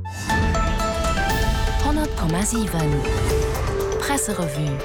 100,7 Presserevue.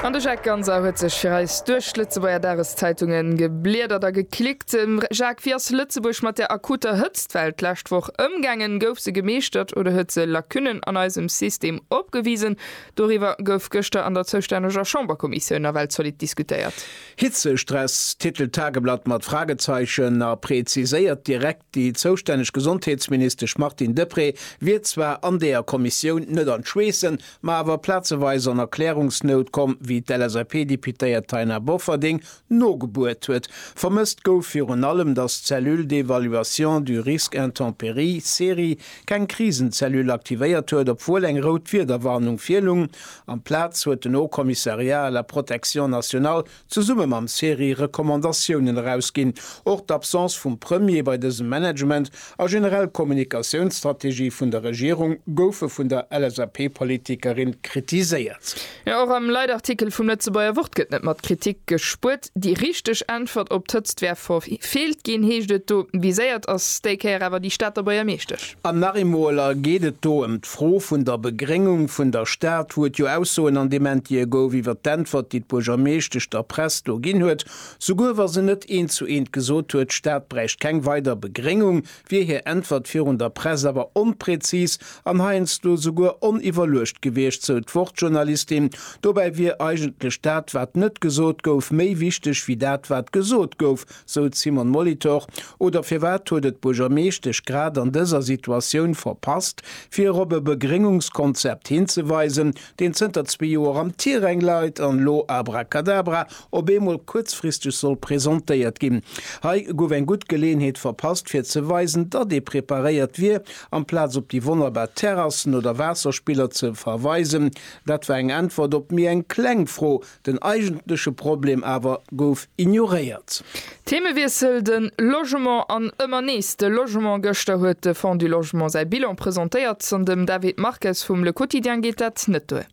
An de Jacques Ganser huet sech fir eis duerch d'Lëtzebuerger Dageszeitunge gebliedert a geklickt. Jacques, wéi ass Lëtzebuerg mat der akuter Hëtztwell d'lescht Woch ëmgaangen? Gouf se gemeeschtert oder huet se Lacunnen an eisem System opgewisen? Doriwwer gouf gëschter an der zoustänneger Chamberkommissioun nawell zolidd diskutéiert. Hitzestress titelt d'Tageblatt mat Fragezeichen a preziséiert direkt, Déi zoustänneg Gesondheetsministesch Martine Deprez wier zwar an deeër Kommissioun net an d'Schweessen, ma awer plazeweis an Erklärungsnout komm, wéi d'LSAP-Deputéiert Taina Bofferding nogebuert huet. Vermësst gouf virun allem, datt d'Cellule d'évaluation du risque intempéries, CERI, keng Krisenzellule aktivéiert huet, obwuel eng rout Wiederwarnung virlung. Amplaz huet den Haut Commissariat à la protection nationale zesumme mam CERI Recommandatiounen erausginn. Och d'Absence vum Premier bei dësem Management a generell d'Kommunikatiounsstrategie vun der Regierung goufe vun der LSAP-Politikerin kritiséiert. Jo, och am Leitartikel vum Lëtzebuerger Wort gëtt net mat Kritik gespuert. Déi richteg Äntwert op d'Hëtzt wär verfeelt ginn, heescht et do. Viséiert ass déi Kéier awer déi Stater Buergermeeschtesch. An nach eemol geet et do ëm D'Fro vun der Begréngung vun der Stad huet jo Aussoen an deem Entie gouf iwwer d'Äntwert, déi d'Buergermeeschtesch der Press do ginn huet, souguer wa se net eent zu eent gesot huet, d'Stad bräicht keng weider Begréngung, wier hir Äntwert virun der Press awer onpräzis an heiansdo souguer oniwwerluecht gewiescht, sou d'Wort-Journalistin. Dobäi wier eigentlech dat, wat net gesot gouf, méi wichteg wéi dat, wat gesot gouf. sou d'Simone Molitor, oder firwat huet et d'Buergermeeschtesch grad an dëser Situatioun verpasst, fir erop e Begréngungskonzept hinzeweisen, deen zënter zwee Joer am Tiräng leit an elo abracadabra op eemol kuerzfristeg soll presentéiert ginn? Hei gouf eng gutt Geleeënheet verpasst, fir ze weisen, datt ee preparéiert wier, amplaz op déi wonnerbar Terrassen oder Waasserspiller ze verweisen. Dat war eng Äntwert op méi eng kleng Fro, Den eigentleche Problem awer gouf ignoréiert. Themewiessel, De Logement an ëmmer nees de Logement. Gëschter huet de Fonds du Logement säi Bilan presentéiert an dem David Marques vum Le Quotidien geet dat net duer.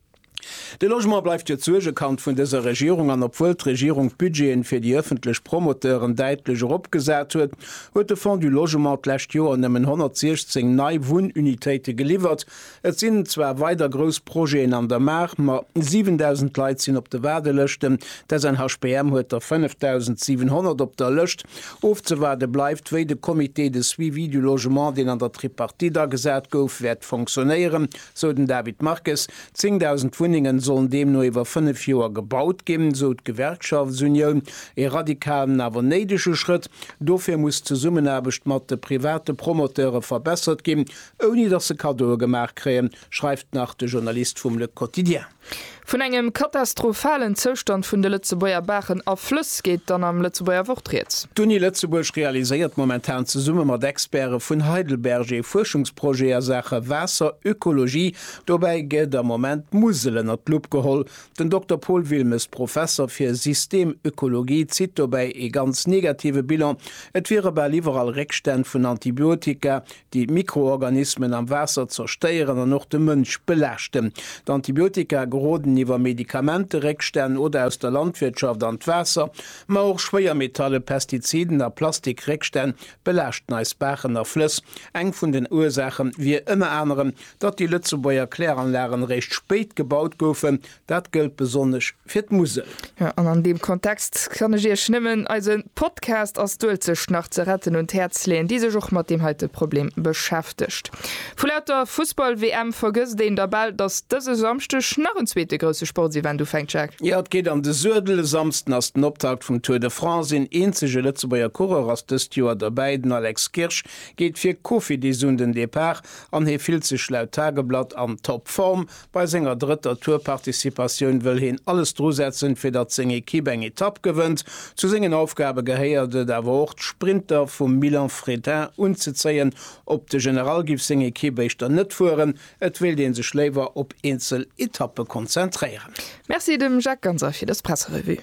De Logement bleift jo d'Suergekand vun dëser Regierung an obwuel d'Regierung d'Budgeten fir déi ëffentlech Promoteuren däitlech eropgesat huet, huet de Fonds du Logement d'lescht Joer nëmmen 116 nei Wunnunitéite geliwwert, Et sinn zwar weider grouss Projeten an der Maach, ma 7.000 Leit sinn op de Waardelëschten. D'SNHPM huet der 5.700 op der Lëscht. Ofzewaarde bleift, wéi de Comité de suivi du logement, deen an der Tripartite agesat gouf, wäert fonctionnéieren, sou den David Marques. 10.000 Wunnengen sollen deemno iwwer fënnef Joer gebaut ginn, sou d'Gewerkschaftsunioun. Ee radikalen, awer néidege Schrëtt. Dofir muss d'Zesummenaarbecht mat de private Promoteure verbessert ginn, Ouni datt se Kaddoe gemaach kréien, schreift nach de Journalist vum Le Quotidien. Vun engem katastrophalen Zoustand vun de Lëtzebuerger Baachen a Flëss geet dann am Lëtzebuerger Wort rieds. D'Uni Lëtzebuerg realiséiert momentan zesumme mat Expäre vun Heidelberg ee Fuerschungsprojet a Saache Waasserökologie. Dobäi gëtt am Moment d'Musel ënner d'Lupp geholl. Den Dokter Paul Wilmes, Professer fir Systemökologie, zitt dobäi ee ganz negative Bilan, Et wiere bal iwwerall Réckstänn vun Antibiotika, déi d'Mikroorganismen am Waasser zerstéieren an och de Mënsch belaaschten. D'Antibiotika geroden iwwer Medikamenteréckstänn oder aus der Landwirtschaft an d'Waasser, ma och Schwéiermetalle, Pestiziden a Plastikréckstänn belaaschten eis Baachen a Flëss. Eng vun den Ursaache wier ënner anerem, datt déi Lëtzebuerger Kläranlagen eréischt spéit gebaut goufen, Dat gëllt besonnesch fir d'Musel. Jo, an an deem Kontext kann ech Iech nëmmen eise Podcast Ass d'Uelzecht nach ze retten? un d'Häerz leeën, déi sech och mat deem heite Problem beschäftegt. Vu lauter Fussball-WM vergësst een da bal, datt dëse Samschdeg nach en zweete grousse Sportsevent ufänkt, Jacques. Jo, et geet an de Suedel. E Samsden ass den Optakt vum Tour de France. Een eenzege Lëtzebuerger Coureur ass dëst Joer dobäi, den Alex Kirsch geet fir Cofidis un den Depart an hie fillt sech laut Tageblatt an Toppform. Bei senger drëtter Tour-Participatioun wëll heen alles drusetzen, fir datt seng Ekipp eng Etapp gewënnt. Zu sengen Aufgabe gehéiert et awer och, d'Sprinter vum Milan Frétin unzezéien. Op de General giff seng Ekipp éischter net fueren, et wéilt ee sech léiwer op eenzel Etappe konzentréieren. Merci dem Jacques Ganser fir dës Presserevue.